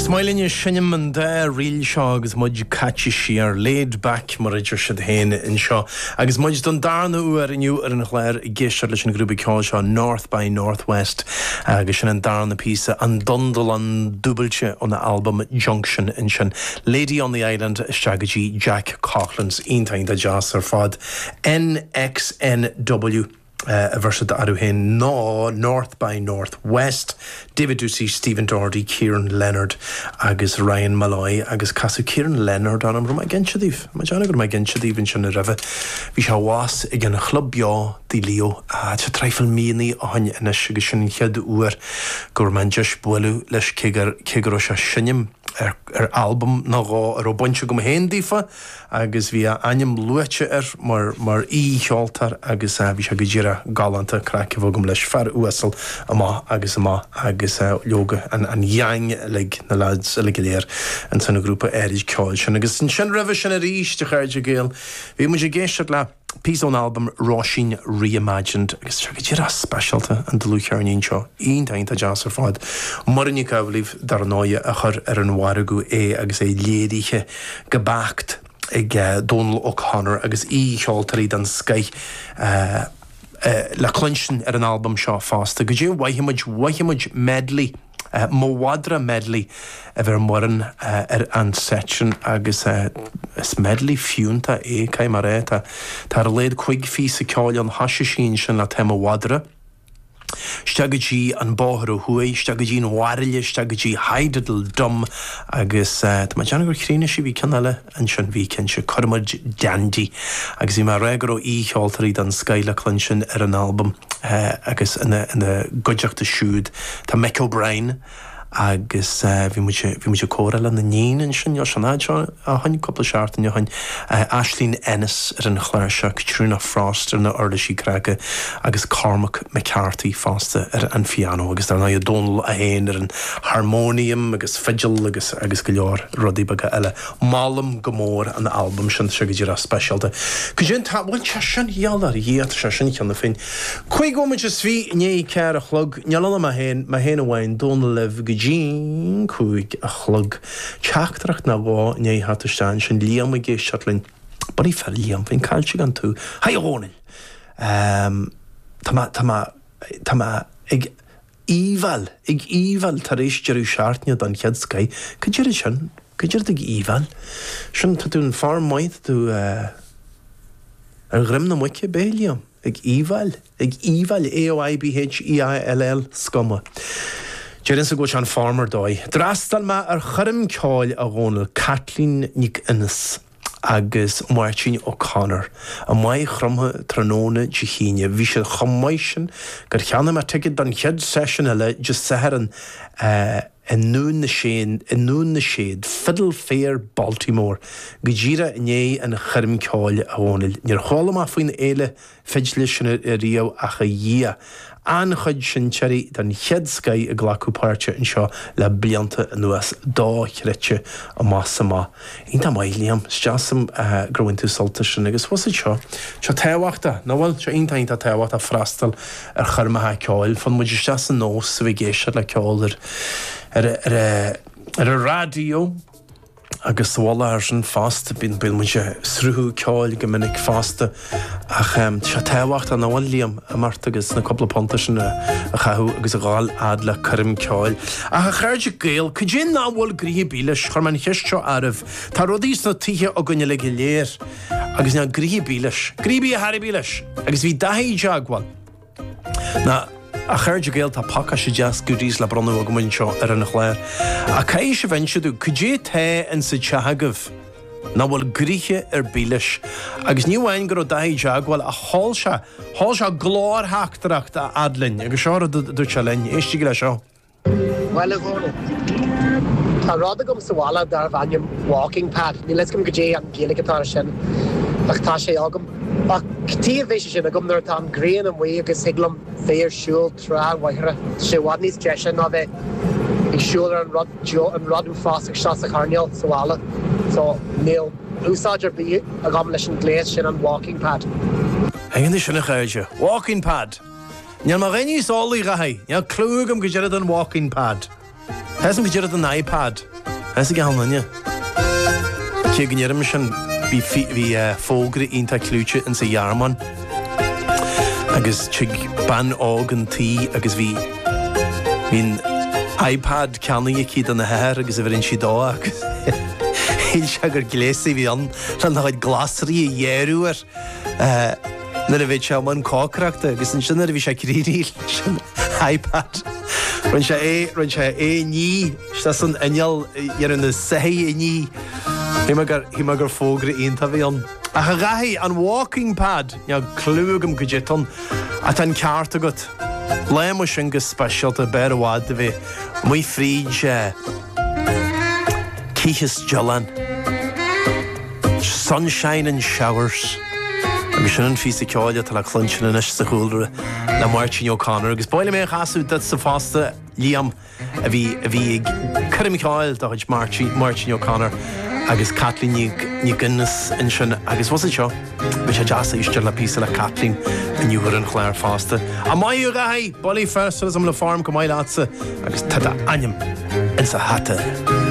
Is maith linn a seinm an dá ríl seo agus muid caite siar, laid back mar a deir siad féin anseo, agus muid don darna huair inniu ar an chlár ag éisteacht leis an ghrúpa ceoil seo North by Northwest agus sin an darna píosa, an dondulon dúbailte óna albam Junction ansin, Lady on the Island isteach go dtí Jack Coughlan's, iontach iontach deas ar fad. NXNW. a bheir siad orthu féin ná North by Northwest, David Doocey, Stephen Doherty, Kieran Leonard agus Ryan Molloy agus casadh Kieran Leonard orm, an raibh mé ag insint daoibh? Tá mé dearfach go raibh mé ag insint daoibh anseo roimhe. Bhí sé abhus ag an Chlub Beo, Tigh Leo, tá traidhfil míonna ó shin anois agus sin an chéad uair go raibh mé, an deis bualadh leis cé go raibh sé ag seinm. ar albam nó dhó a raibh baint agam féin leofa agus bhí a ainm luaite air mar aoi-cheoltóir agus bhí sé go díreach galánta, craic a bhí agam leis, fear uasal amach agus amach agus leoga an gheaing uilig, na leaids uilig go léir ins an ghrúpa áirid ceoil sin. Agus ansin roimhe sin arís, a chairde Gael, bhí muid ag éisteacht le. Píosa ón albam Róisín Reimagined agus is í go díreach speisialta an dlúthcheirnín seo, iontach iontach deas ar fad. Muireann Nic Amhlaoibh dar ndóigh a chuir ar an mhargadh é agus é léirithe go beacht ag Dónal O'Connor agus aoi-cheoltóirí den scoith le cluinstin ar an albam seo fosta. Cad é, tá mo mhad, mo mhad medley. Mo mhadra Medley a bhí ag Muireann ar an seit sin agus is medley fiúnta é, caithfidh mé a rá. Tá tá ar a laghad cúig phíosa ceoil ann, thoisigh sí ansin le Tá Mo Mhadra. Isteach go dtí an bóthar ó thuaidh, isteach go dtí An Bairille, isteach go dtí Hydidle Dum agus tá mé ag déanamh gur chríochnaigh sí, bhí ceann eile, Ansin bhí, cinnte, Cuirfimid Dandy agus bhí mé ag rá go raibh aoi-cheoltóirí den scoith le cluinstin ar an albam agus ina gcuideachta siúd tá Mick O'Brien agus bhí muid, bhí muid ag comhrá lena níon ansin níl sé an fhad sin ó shoin, cúpla seachtain ó shoin, Aisling Ennis ar an chláirseach, Caitríona Frost ar na uirlisí cnagtha agus Cormac McCarthy fosta ar an phianó agus dar ndóigh Dónal é féin ar an harmonium agus fidil agus agus go leor rudaí beaga eile. Molaim go mór an albam sin, tá sé go díreach speisialta. Cad é an t-am a bhfuil, tá sé sin, i ngeall ar Dhia, tá sé sin cheana féin. Cúig nóiméad is fiche i ndiaidh a ceathair a chlog, níl ann ach mé féin, mé féin amháin, Dónal libh go dtí an cúig a chlog. Teachtaireacht nó dhó i ndiaidh a theacht isteach, ansin Liam ag éisteacht linn, ba dóigh fir, Liam, bheinn caillte gan tú, Hi a Dhónaill, tá mé, tá mé, tá mé ag, Aoibheall, Ag aoibheall tar éis deireadh seachtaine don chéad scoith. Cad é an rud é sin? Cad é an rud ag aoibheall? Sin, tá tú in form maith, tá tú eh. ar dhroim na muice, beidh, a Liam. Ag aoibheall. Ag aoibheall, AOIBHEALL, is cuma. Déarfainn-sa go bhfuil sé in form ar dóigh. D'fhreastail mé ar choirm ceoil a Dhónaill, Kathleen MacInnes. agus Máirtín O'Connor. I Maigh Chromtha tráthnóna Dé hAoine, bhí siad chomh maith sin gur cheannaigh mé ticéad don chéad seisiún eile Dé Sathairn i nDún na Séad, Fiddle Fair Baltimore, go díreach i ndiaidh an choirm ceoil. A Dhónaill, níor chuala mé faoin fhéile fidle sin ariamh ach a Dhia! An-chuid seinnteoirí den chéad scaith ag glacadh páirte anseo le blianta anuas, dochreidte, amach is amach. Iontach maith, Liam, is deas liom gur bhain tú sult as sin. Agus bhfuil a fhios agat seo. Seo tábhachtach, nach bhfuil? Seo iontach, iontach tábhachtach, freastal ar choirmeacha ceoil. Faigheann muid isteach sa nós a bheith ag éisteacht le ceol ar an raidió. Agus sa mhullach ar sin fosta, bíonn muid ag sruthú ceoil go minic fosta, ach tá tábhacht an domhain, Liam, imeacht agus na cúpla punta sin a chaitheamh agus a ghabháil a fhad le coirm ceoil. Ach a chairde Gael, cad é nach bhfuil gnoithe ar bith leis, chuir mé an cheist seo oraibh, tá rudaí sna tithe againn uilig go léir agus níl gnoithe ar bith leis. Gnoithe ar bith, a dhath ar bith leis! Agus bhí Daithí i dteagmháil. Na, a chairde Gael, tá pacáiste deas goodies le bronnadh agam anseo ar an chlár. Ach caithfidh sibh inse domh. Cad é tá insa teach agaibh? Nach bhfuil gnoithe ar bith leis? Agus ní amháin go raibh Dáithí i dteagmháil, ach sheol sé, sheol sé glórtheachtaireacht a fhad linn, agus seo an rud a dúirt sé linn, éistigí le seo. Bhuel, a Dhónaill. Tá rud agam sa bhaile darbh ainm walking pad. Níl a fhios agam goidé an Ghaeilge atá ar sin ach tá sé agam. Ach cad chuige a mbeadh sé sin agam nuair atá an ghrian amuigh agus thig liom bheith ar siúl trá Mhachaire, tá sé i bhfad níos deise ná bheith ag siúl ar an rud an rud uafásach seo sa choirnéal sa bhaile. So, níl úsáid ar bith agam leis an ghléas sin an walking pad. Anois, a Chaoilte! Walking pad! Níl mé a dhath níos eolaí, a Dháithí. Níl cliú agam goidé an rud é an walking pad. Tá a fhios agam goidé an rud é an iPad. Tá a fhios ag achan duine. Cé go ndeirim sin, bhí fógra iontach clúití ins an Ghearmáin agus tig bean óg chun tí agus bhí an iPad ceannaithe aici dona hathair agus bheireann sí dó agus shíl sé gur gléas a bhí ann lena chuid glasraí a ghearradh air. Nuair a bhí tú i mbun cócaireachta agus ansin nuair a bhí sé réidh leis an iPad rinn sé é rinn sé é isteach san inneall leis na soithí a ní. Shíl mé gur shíl mé gur fógra iontach a bhí ann. Ach a Dhaithí, an walking pad, níl cliú agam caidé atá ann. Ach tá an ceart agat. Léigh muid sin go speisialta b'fhearr i bhfad do bheith amuigh fríd. Teach Stiolláin, Sunshine and Showers, agus sin an phíosa ceoil atá le cluinstean anois sa chúlra le Máirtín O'Connor. Agus ba mhaith liom é a chasadh duitse fosta, Liam, a bhí a bhí ag cur an cheoil de chuid Máirtín Máirtín O'Connor agus Caitlín Nic Nic Aonghusa ansin agus abhus anseo. Bhí sé deas éisteacht le píosa le Caitlín inniu ar an chlár fosta. Ó maith thú a Dhaithí! Bulaí fir tá súil agam go bhfuil an form go maith leatsa agus tá d'ainm insa hata.